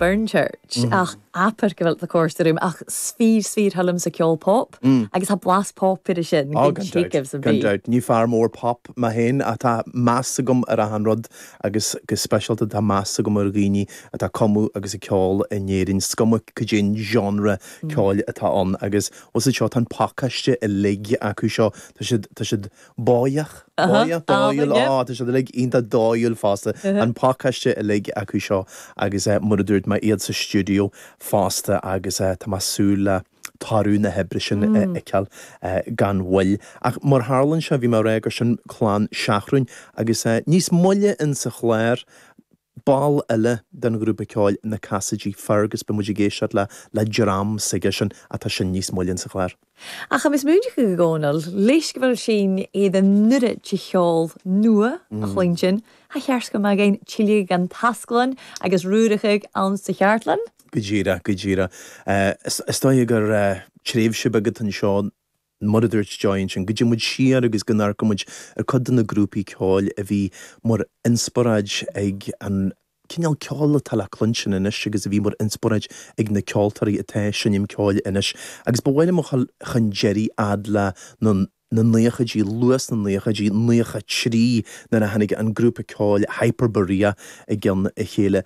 Burn Church ach abair go bhfuil thu còir is toigh liomsa ceol pop agus tha blas pop ar a sin Oh gan dabht, gan dabht, ní fear mór pop mé féin ach tá meas agam ar achan rud agus go speisialta tá meas agam ar dhaoine atá ag cumadh agus ag ceol in Éirinn, is cuma caidé an genre ceoil atá ann agus bhuel iad seo tá an pacáiste uilig acu seo, tá siad, tá siad. Báíoch, báíoch, dóighiúil, á, tá siad uilig iontach dóighiúil fosta, an pacáiste uilig acu seo agus mar a dúirt mé, iad sa stiúideo fosta agus tá mé ag súil le toradh na hoibre sin a fheiceáil gan mhoill. Ach mar a tharla anseo, bhí mé ag rá gur sin clann Sheathrúin agus níos moille insa chlár, Ball eile den ghrúpa ceoil Na Casaidigh, Fergus, beidh muid ag éisteacht le dream s'aigesean ach tá sin níos moille sa chlár. Ach tha mi smaoineachadh a Chonaill, leis go bhfuil sinn an dèidh uiread de cheòl nua a chluinstin, tha e ceart go mbeadh againn tilleadh dhan tasglann agus rùrachadh ann sa cheardlann? Go díreach, go díreach. Is dóigh gur tréimhse bheag atá anseo. mar a dúirt tú ansin, go dté muid siar agus go n-amharcfaidh muid ar cuid de na grúpaí ceoil a bhí mar inspioráid ag an cineál ceoil atá le cluinstin anois agus a bhí mar inspioráid ag na ceoltóirí atá ag seinm ceoil anois. Agus ba mhaith liom a ghabháil chun deiridh fhad le na naochaidí, luath sna naochaidí, naocha trí, nuair a tháinig an grúpa ceoil Hyperborea i gceann a chéile.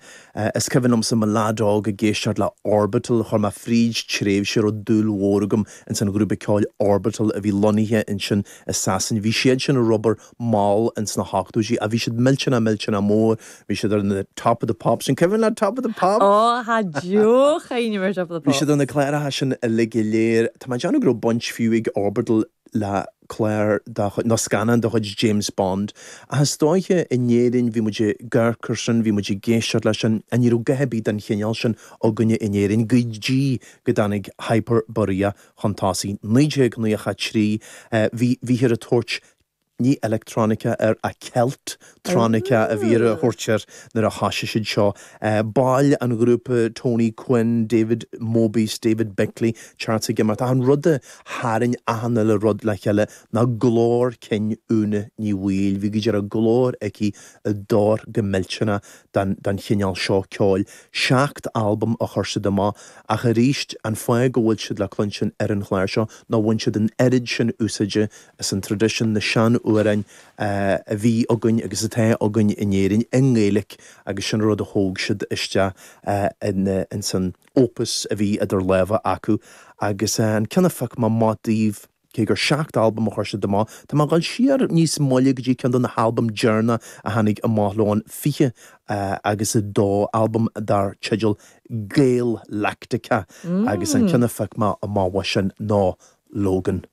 Is cuimhin liomsa i mo leaid óg ag éisteacht le Orbital, chuaigh mé fríd tréimhse a raibh dúil mhór agam ins an ghrúpa ceoil Orbital a bhí lonnaithe ansin i Sasain. Bhí siad sin ag obair mall ins na hochtóidí ach bhí siad millteanach millteanach mór, bhí siad ar na Top of the Pops, an cuimhin leat Top of the Pops? Ó, tá deoch éinne mar Top of the Pops. Bhí siad ar na cláracha sin uilig go léir. Tá mé ag déanamh go raibh baint fiú ag Orbital le clár de chuid, nó scannán de chuid James Bond. Ach is dóiche, in Éirinn bhí muid ag amharc air sin, bhí muid ag éisteacht leis sin, ach ní raibh a dhath ar bith den chineál sin againne in Éirinn go dtí go dtáinig Hyperborea chun tosaigh. 1993, bhí, bhíthear ag tabhairt, ní electronica air, ach celt tronica a bhíthear a thabhairt air nuair a thoisigh siad seo, baill an ghrúpa Tony Quinn, David Mobius, David Bickley, Cheers ag imeacht, ach an rud a tharraing achan uile rud le chéile ná glór cinn Úna Ní Bhaoill. Bhí go dearfa glór aici a d'oir go millteanach don chineál seo ceoil. Seacht albam a chuir siad amach, ach arís, an fáth go bhfuil siad le cluinstin ar an chlár seo ná bhain siad an oiread sin úsáide Is an traidisiún, na sean-amhráin a bhí againn agus atá againn in Éirinn i nGaeilic agus sin rud a thóg siad isteach in san opus a bhí idir lámha acu agus an ceann a phioc mé amach daoibh, cé gur seacht albam a chuir siad amach, tá mé ag dul siar níos moille go dtí ceann de na halbaim deireanach a tháinig amach leo, an 20 agus a dó albam dar teideal Gaelactica agus an ceann a phioc mé amach uaidh sin nó Logan.